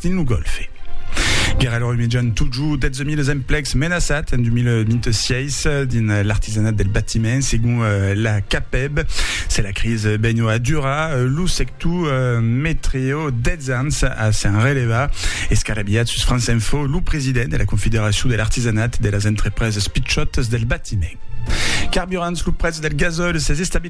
dins lo Gòlfe. Guerra lor imejan totjor 12.000 es emplecs menaçats en 2026 dins l'artisanat del batiment, segon la CAPEB. Se la cris benho a durar, lo sector metreo 10 ans a s'en relevar. Escarabilhat sus France Info, lo president de la Confederacion de l'artisanat de las entrepreses pichòtas del batiment. Carburants, lo prètz del gasòl s'es estabilizat.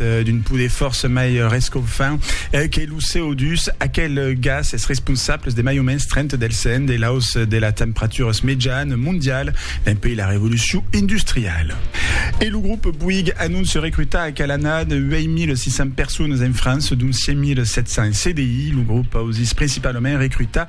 d'un poder fòrça mai rescofant que lo CO2. Aquel gas es responsable de mai o mens 30 del cent de l'aus de la temperaturas mejan mondial dempuèi la revolucion industriala. E lo grop Bouygues anonce recrutar a Calanat 8.600 personas en França, dont 5.700 en CDI. Lo grop ausís principalament recrutar